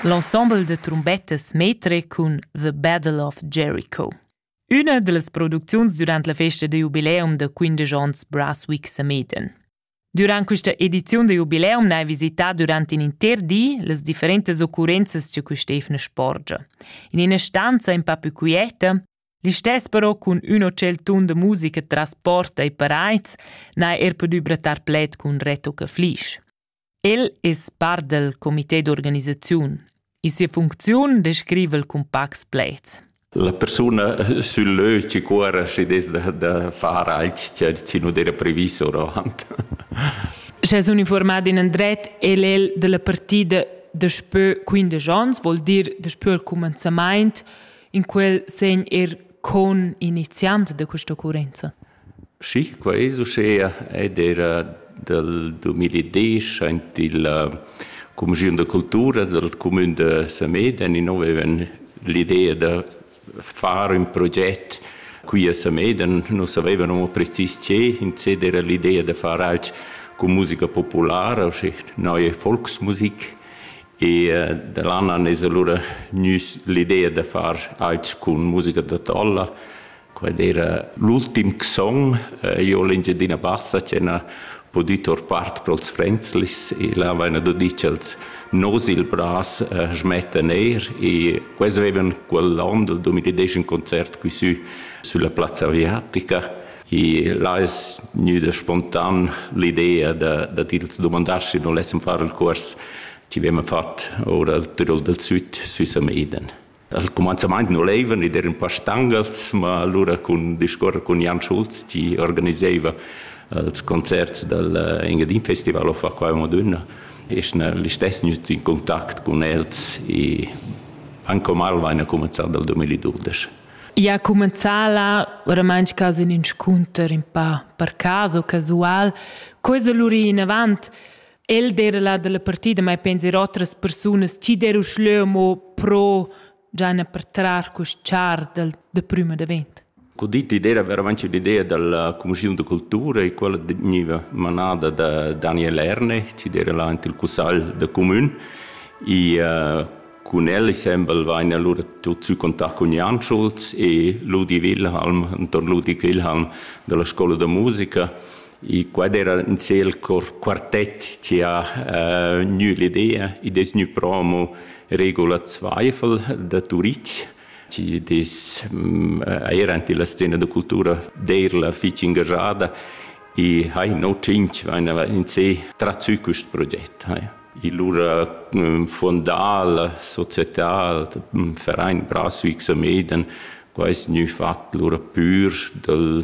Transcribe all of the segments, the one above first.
L'ensemble de trombettas metre cun The Battle of Jericho. Üna dellas producziuns durant la festa da jubileum da 15 ans Brasswick Sameden. Durant questa edizione da jubileum n'hai visità durant in inter di las differentas occurrenzas che quest'efna sporgia. In ina stanza in pa più quieta, Listess però cun un hotel tun de musica tras porta e paraids n'ha er podu brattar pled cun Reto Caflisch. El es part dal comité d'organisaziun. In sia funcziun descriva el cun pacs pleds. La persuna sul lö ci cuora și des da, da far alch ce, ce nu era previs oravant. Sche es uniformat in andret, el el della partida daspö 15 ans, vuol dir daspö il comenzament, in quel segn er con iniziant de questa occorrenza. Schi, quai es uschea ed eira dal dumiladiesch aint illa cumischiun da cultura dal cumün da Samedan inno vaivan l'idea da far ün proget qui a Samedan. Nu savaivan amo precis che, insè d'eira l'idea da far alch cun musica populara, usche neue Volksmusik e da là nan es alura gnüs l'idea da far alch cun musica da talla. Quel era l'ultim song. Io ho l'Engiadina Bassa che n'ha pudü tor part pro'ls Fränzlis e là vaina do dit cha'ls nos il bras schmettan eir e quels avevan quell'on del 2010 ün concert qui sü sulla Plazza Aviatica e là es gnüda spontan l'idea da da tils dumandar schi non lessem far il cuors chi vema fat our al Tirol del Süd sü Sameden. Al cumanzamaint nu leivan id eran pas stangas, ma alura cun discuorrer cun Jan Schulz chi organisaiva ils concerts dal Engadin Festival of Acqua Madonna e schna listess gnüt in contact cun els e anche omal vaina cumanzà dal 2012. Ja cumanzà là oramaunt casu ün inscunter ün pa per caso casual. Co es lura inavant? El d'era là dalla partida, mai penser otras persunas, chi der uschleu mo pro giana per trar quest char del, de prima davent. Ho detto idea veramente l'idea della commissione di cultura e quella veniva manada da Daniel Ernech, ci era là in il Cussal de Comune e uh, con el sembel vain allora tot sü contact con Jan Schulz e Ludi Wilhelm, intorno Ludi Wilhelm della scuola de musica E quad era in ciel cor quartett che ha uh, gnü l'idea. Id es gnü promo Regula Zweifel da Turitg che des mm, era in la scena da cultura d'eir la fich engajada e hai no cinc vaina in se trazü quist proget. Hai. E lura mm, fondal, societal, mm, Verein Braswijk Sameden, quai es gnü fat lura pür dal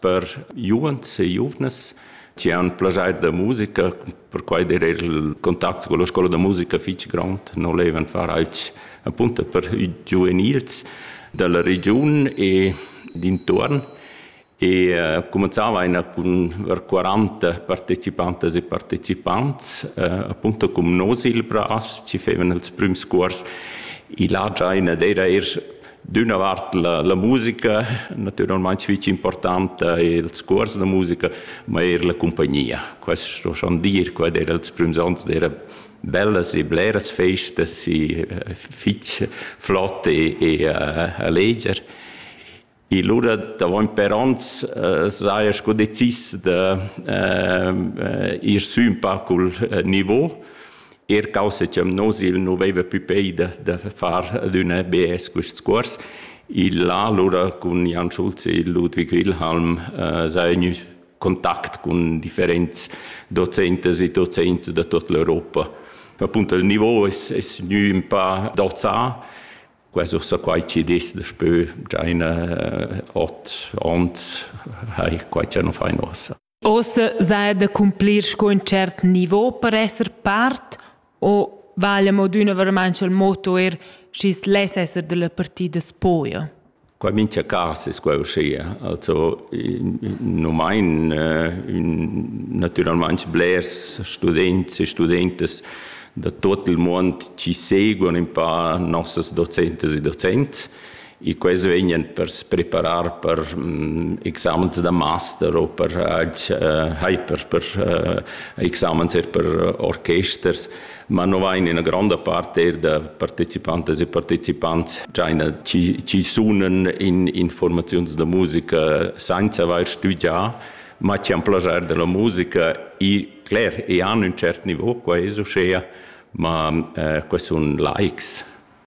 Per giuvens e giuvnas chi han plaschair da musica, perquai der eir il contact con la scoula da musica fich grond, non levan far alch appunto per i giuvenils da la regiun e d'intuorn e uh, cumanzava einer cun ver 40 partecipantas e partecipants, uh, appunto cum nos il bras, ci fevan els prüms cuors. I là già ina d'eira eir d'üna vart la, la musica natüralmaing fich importanta e ils cuors da musica, ma eir la cumpagnia. Quest sto schon dir, quai era ils prüms ons d'era bellas e bleras festas e fich flott e, e alleger. E lura davant per ons uh, saja sco decis da uh, ir sü un pa cul uh, niveau er causa che nus il nu veva più peida da far adüna BS quests cuors. Il là allura cun Jan Schulz e Ludwig Wilhelm eh, s'ha gnü contact cun differents docentas e docents da tut l'Europa. Appunto il niveau es, es gnü un pa dozà, quasi ussa quai chi dis daspö già in eh, ot ons hai quai cha nu fain uossa. Ossa sa da cumplir sco in cert nivo per esser part o vala mo d'üna verament il motto er schi's less esser dalla partida spoja? Qua mincha cas es quai uschia. Also nu main natüralmaing blers students e studentas da tuot il muond chi seguan ün pa nossas docentas e docents e quels vegnan per se preparar per mm, examens da master o per uh, per, per uh, examens er per orchesters, ma no vain ina gronda parte er da partecipantas e partecipants già ina ci, ci sunan in informaziuns da musica senza aver studià, ma ci han plagiar della musica e cler, e hanno un cert niveau qua esu schea, ma uh, eh, questi sono likes.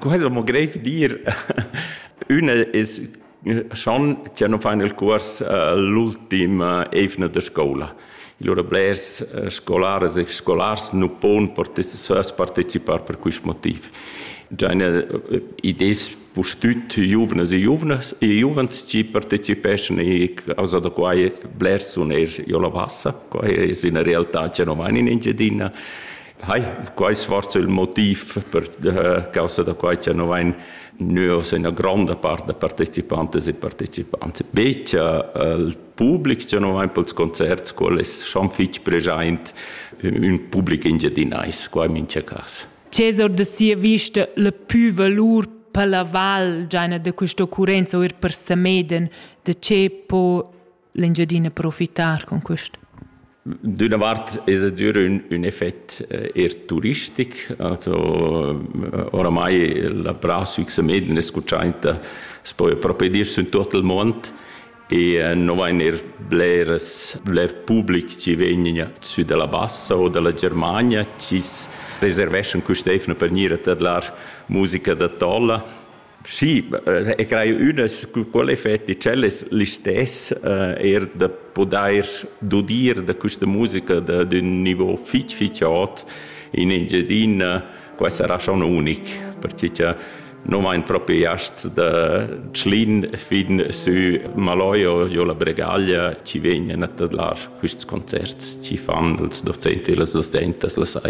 Quai es amo greiv dir. Ün es schon cha nu fan il cuors l'ultim eivna da scoula. Lura blers scolaras e scolars nu pon partecipar per quist motiv. Già üna id es pustüt giuvnas e giuvnas e giuvens chi partecipeschan e causa da quai blers sun eir giò la Bassa. Quai es üna realtà cha nu vain in Engiadina Hai, quai svarso il motiv per äh, causa da quai che no vain nus ina granda part da partecipantes e partecipants. Bec il public che no vain pels concerts, quel es schon fich preschaint ün public engiadinais, qua in mincha cas. Cesar de sia vista la più valur per la val giaina de questa occurenza o ir per Sameden, de ce po l'Engiadina profitar con quest? D'üna vart es adüra ün, ün effet eh, eir turistic, also eh, oramai la Pra Süchse Meden escuchainta s'poi propi dir sün tuot il mond e eh, non vain eir bleras, bler public chi vegnan sü dalla Bassa o dalla Germania, chi reserveschan quist'eivna per gnir a tadlar musica da tolla Sì, e crai ünas quelle effetti cellas listess uh, er da podair dudir da questa musica da d'un niveau fich fich ot in Engiadina qua sarà schon unic, perché cha non vain propriasts da Tschlin fin sü Maloio jo la Bregaglia ci vegnan a tadlar quists concerts, ci fan els docenti e las docentas la saira.